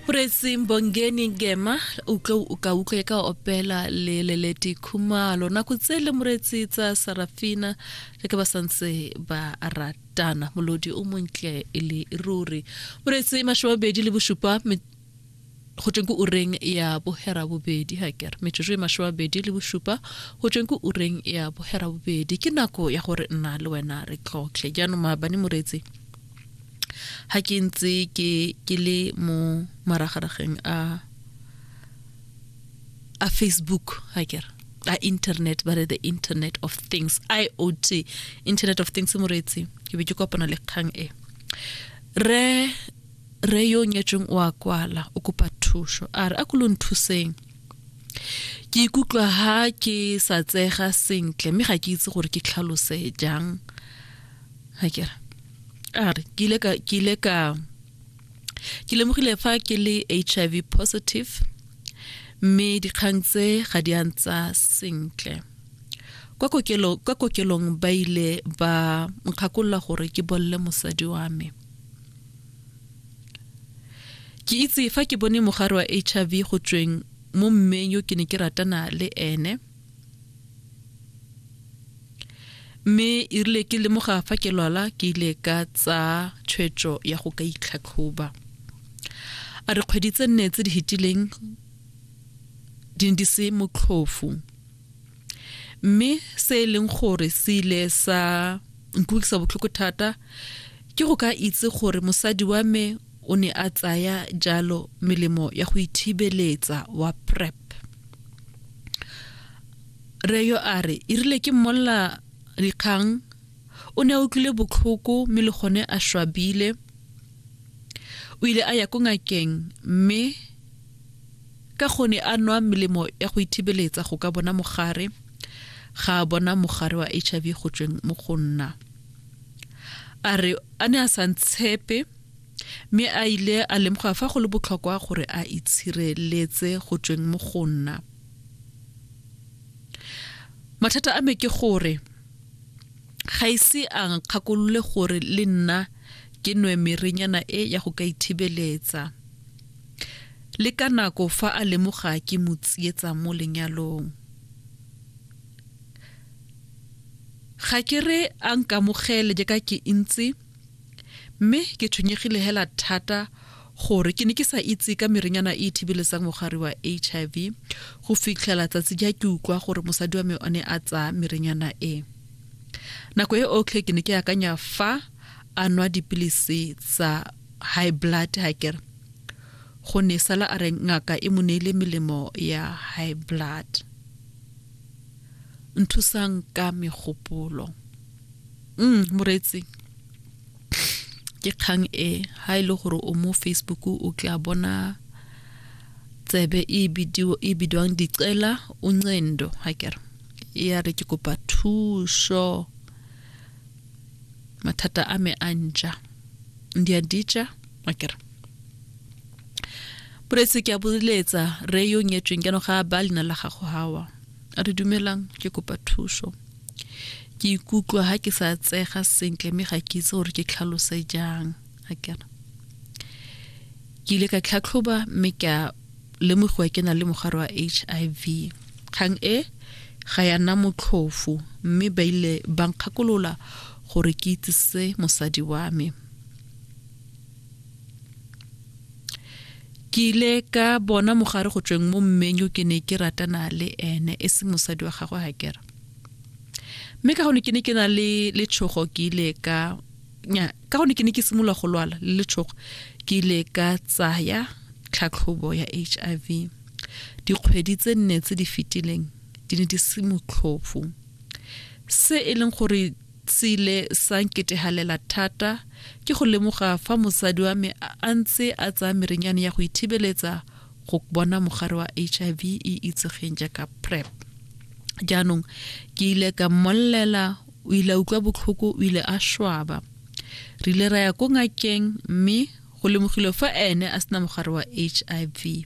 Presi Mbongeni Gema o tlo o ka utlwe ka opela le leleti khumalo nako tse le moretsi tsa Sarafina le ke ba santse ba ratana molodi o montle e le ruri moretsi mashobabedi le bosupa go tsweng ko ureng ya bohera bobedi ha kere metsotso e masho a bedi le bosupa go tsweng ko ureng ya bohera bobedi ke nako ya gore nna le wena re tlhotlhe jaanong maabane moretsi ha ke ntse ke ke le mo maragarageng a a facebook ha ke a internet ba re the internet of things iot internet of things moreetsi ke be ke kopana le kgang e re re yo nyetsweng o a kwala o kopa thuso a re a ko lo nthuseng ke ikutlwa ha ke sa tsega sentle mme ga ke itse gore ke tlhalose jang ga kere a re ke ile ka ke ile ka ke lemogile fa ke le hiv positive mme dikgang tse ga di antsa sentle kwa kokelong kwa kokelong ba ile ba nkgakolola gore ke bolle mosadi wa me ke itse fa ke bone mogare wa hiv go tsweng mo mmeng yo ke ne ke ratana le ene mme e rile ke lemoga fa ke lwala ke ile ka tsa tshwetso ya go ka itlhatlhoba a re kgwedi tse nne tse di fetileng di ne di se motlhofu mme se e leng gore se ile sa nkutlwisa botlhoko thata ke go ka itse gore mosadi wa me o ne a tsaya jalo melemo ya go ithibeletsa wa prep reyo a re e rile ke mmolla dikgang o ne a utlwile botlhoko mme le gone a swabile o ile a ya ko ngakeng mme ka gone a nwa melemo ya go ithibeletsa go ka bona mogare ga a bona mogare wa h i v go tsweng mo go nna a re a ne a sa ntshepe mme a ile a lemoga fa go le botlhokwa gore a itshireletse go tsweng mo go nna mathata a me ke gore ga ise a nkgakolole gore le nna ke nwe merenyana e ya go ka ithibeletsa le ka nako fa a lemoga ke mo tsietsa mo lenyalong ga ke re a nkamogele jaaka ke ntse Mme ke tshwenyegile hela thata gore ke ne ke sa itse ka merenyana e e thibeletsang mogare wa HIV go fitlhela tsatsi ja ke utlwa gore mosadi wa me o ne a tsaya merenyana e. Nako e otlhe ke ne ke akanya fa a nwa dipilisi tsa high blood ha kere go ne sala a re ngaka e mo neile melemo ya high blood nthusang ka megopolo mm moretsi ke kgang e ha ile e gore o mo facebook o tla bona tsebe e bidio e bidwang dicela uncendo ha ke re e ya re ke kopa thuso mathata a me a ntša ndi a ditša ha ke re boretsi ke a boletsa re yo nyetsweng ke no ga ba lena la gago hawa a re dumelang ke kopa thuso ke ikutlwa ha ke sa tsega sentle mme ga ke itse gore ke tlhalose jang a kena ke ile ka tlhatlhoba mme ke a lemogiwa ke na le mogare wa h i v kgang e ga ya nna motlhofo mme ba ile ba nkgakolola gore ke itsise mosadi wa me ke ile ka bona mogare go tsweng mo mmeng yo ke ne ke ratana le ene e seng mosadi wa gagwe ga kera mme ka gone ke ne ke na le letshogo ke ile ka nya ka gone ke ne ke simolola go lwala le letshogo ke ile ka tsaya tlhatlhobo ya h i v dikgwedi tse nne tse di fetileng di ne di se motlhofo se e leng gore se ile sa nketegalela thata ke go lemoga fa mosadi wa me a ntse a tsaya merenyane ya go ithibeletsa go bona mogare wa hiv e itsegeng jaaka prep jaanong ke ile ka mmollela o ile utlwa botlhoko o ile a swaba re ile ra ya ko ngakeng mme go lemogile fa ene a sena mogare wa hiv